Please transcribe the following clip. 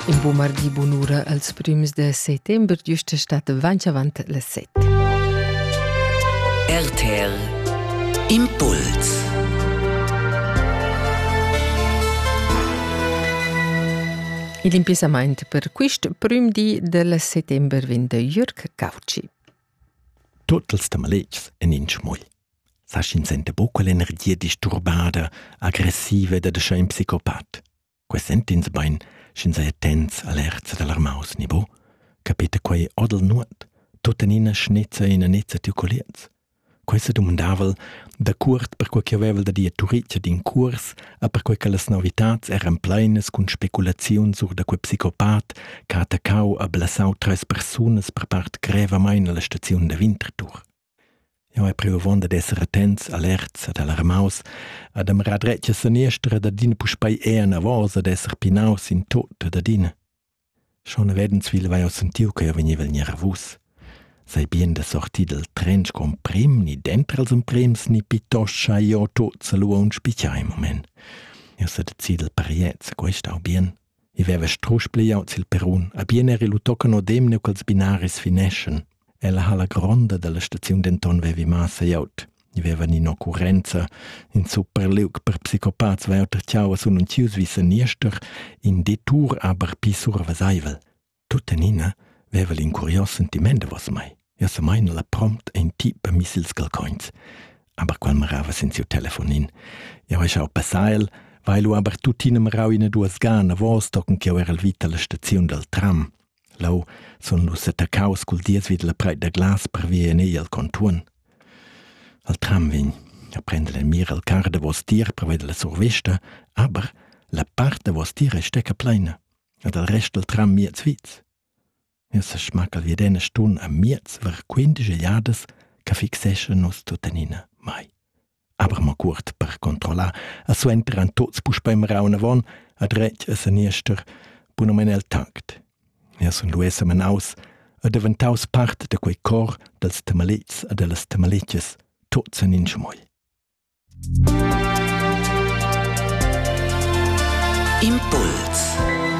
In bu mardi bunura als prüms de settember giusta stat vanch avant le set. RTL Impuls Il impissamaint per quist prüm di del settember vin de Jürg Cauci. Tuttels de maletgs en in schmull. Sa schin sente bucca l'energia disturbada, aggressiva ed adeschà in psicopat. Quei sentins bein, sch'ins ei attents alerts dall'armaus ni bu? Capita quei odel nuot? Tuttenina schnezza ina nezza tiu colliers. Quei sedumandavel dacuort per quei che havevel da dir Turitgia d'in cuors a perquei che las novitats eran pleinas cun speculaziun sur da quei psicopat che ha attaccau a blasau treis persunas per part grevamein alla staziun da Winterthur. Jau hai priu avon dad esser attents, alerts ed alarmaus, ad admirar dretg a saniester ed adina puspei enavos ad esser pinaus in tut ed adina. Schon redensvil vai jau sentiu che jau vegniva gnervus. Sai bien da sortir dal tren sco emprim, ni dentro als emprims, ni pittoscha io tut sa lu aunc spitgà in moment. Eu sa decid dal pariez, quest au bien. e veva strusch pliaut sil perrun, abien era lu tochen odem neu ch'ils binaris fineschan. Ella halla gronda dalla staziun denton vevi massa glieud. I vevan in'occurrenza, in super liug per psicopats vai auter tiaua sun untius vi seniester, in detur aber pli surveseivel. Tuttenina veva l'incurios sentiment davos mei. Ja sa meina la prompt ein ti per mis ils calcoins. Aber qual marava sen siu telefonin. Ja hai schau passar el, weil lu aber tuttina marau ina duas gana vos tocken che era el vita la staziun dal tram. Lau sun nus attaccaus cul dies vid la preit da glas per via en ei al contuon. Al tram vegn a prender el mir al car da vos tier per veder la survista, aber la part da vos tier è stecca pleina. e dal rest dal tram miez Sviz. Eu sa schmacca vi d'ena stun a miez var quindesch jadas che fixescha nos tuttenina mai. Aber mo cuort per controllar, a suenter an tots puspei meraun avon, a dretg a seniester, bunomen el tact. Eu sun lues menaus, a deventaus part de quei cor dals temalits a dellas temalitches, tots en in schmoi. Impuls